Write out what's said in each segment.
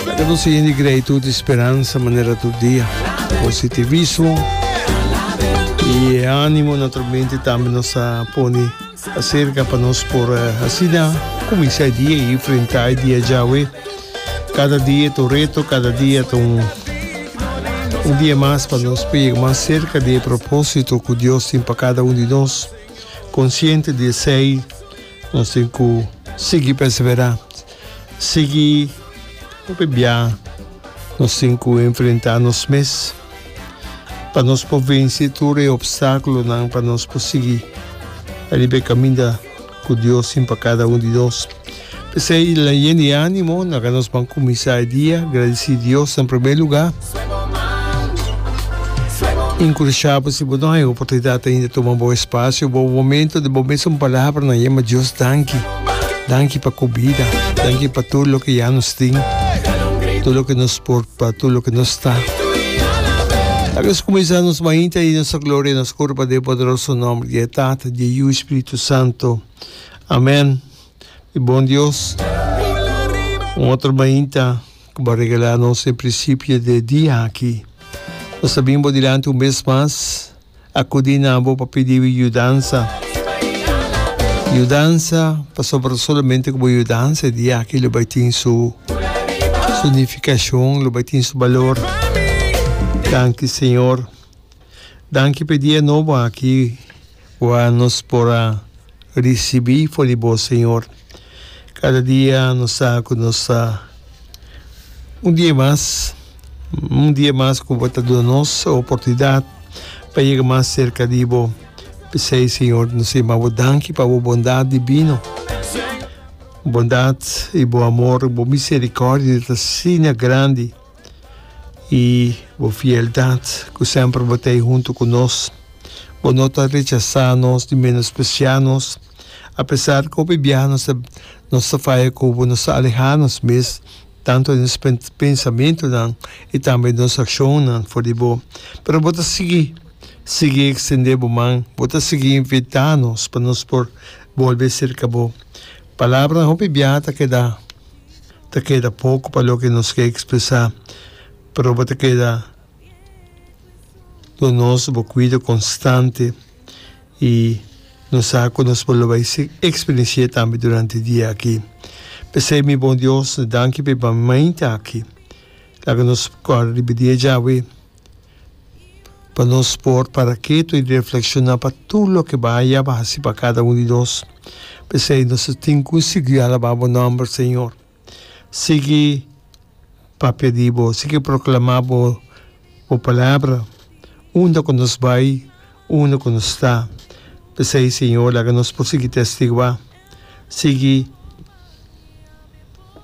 Laga nos hende grei tur di speransa manera tur dia. Positivismo y e animo naturalmente tambe nos a pone acerca pa nos por asina cuminsa e dia y enfrenta e dia djawe. Cada dia ta un reto, cada dia ta un dia mas pa nos por yega mas cerca di e proposito cu Dios tin pa cada un di nos. Consciente di esey. Nos tin cu sigui perseverá, sigui hopi bia nos tin cu enfrentá nos mes pa nos por venci tur e obstáculonan pa nos por sigui riba e caminda cu Dios tin pa cada un di nos. P'esei, leyendo e ánimo, nan nos ban cuminsá e dia gradicí Dios na primer lugá. Inkursha bo si bo no hay oportunidat ainda tuma bo espasio bo momento di bo mes un palabra na yema Dios danki danki pa ku bida danki pa tur loke ya nos tin tur loke nos por pa tur loke nos ta tal bes kuminsá nos mainta y nos gloria y nos kor pa den poderoso nomber di e Tata di e Yu y Spiritu Santo amen mi bon Dios un otro mainta. ku bo a regalá nos e prinsipio dje dia aki. Nos a bini bo dilanti un bes mas, akudí na bo pa pidí bo yudansa. Yudansa, pasobra solamente ku bo yudansa e dia aki lo bai tin su sinifikashon, lo bai tin su balor. Danki, Señor. Danki p'e dia nobo aki ua nos por a ricibi for di Bo, Señor. Cada dia nos sa cu nos ta un dia mas, un dia mas cu Bo ta duna nos e oportunidad pa yega mas cerca di Bo. P'esey, Señor, nos ta yama Bo danki pa Bo bondad divino. Bondad y Bo amor, Bo misericordia ta asina grandi. i bo fieldat ku semper bo ta ei huntu ku nos. Bo no ta rechasá nos ni menospresiá nos. Apesar ku hopi biaha nos ta nos ta faya ku bo, nos ta alehá nos mes, tantu den nos pensamentunan i tambe den nos akshonnan for di bo, pero bo ta sigui, sigui ekstendé bo man, bo ta sigui invitá nos pa nos por bolbe serka bo. Palabranan hopi biaha ta keda. ta keda poco pa loke nos ke expresa, pero bo ta keda cu nos, bo cuido constante y nos sa cu nos por lo bay experiencia tambe durante dia aki. P'esey mi bon Dios, danki p'e baminta aki. Laga nos cor riba di e Jahwe. pa nos por para ketu i reflekshoná pa tur loke baya bo a hasi pa kada un di nos. P'esei nos ta tin ku sigui alabá bo nòmber, Señor. Sigui papia di bo, sigui proklamá bo palabra unda ku nos bai, unda ku nos ta. P'esei, Señor, laga nos por sigui testiguá. sigui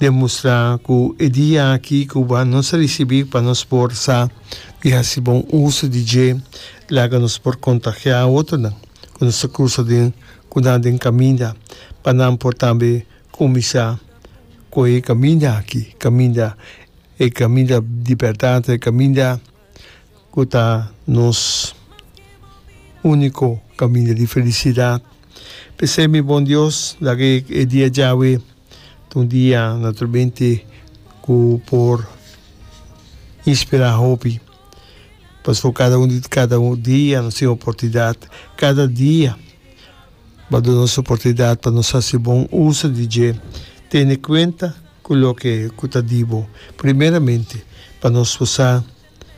demustrá ku e dia aki Cuba nos a risibí pa nos por sa di hasi bon uso di dje, laga nos por kontagiá otronan ku nos ta krusa den ku nan den kaminda pa nan por tambe kuminsá ku e kaminda aki, kaminda e kaminda di bèrdat, e kaminda. ku ta nos úniko kaminda di felisidat. P'esei mi bon Dios, laga e e dia djawe ta un dia naturalmente ku por inspirá hopi. Pasobra kada un di kada un dia nos tin oportunidat, kada dia bo duna nos oportunidat pa nos hasi bon uso di dje tene kuenta ku loke ku ta di bo. Primeramente pa nos por sa.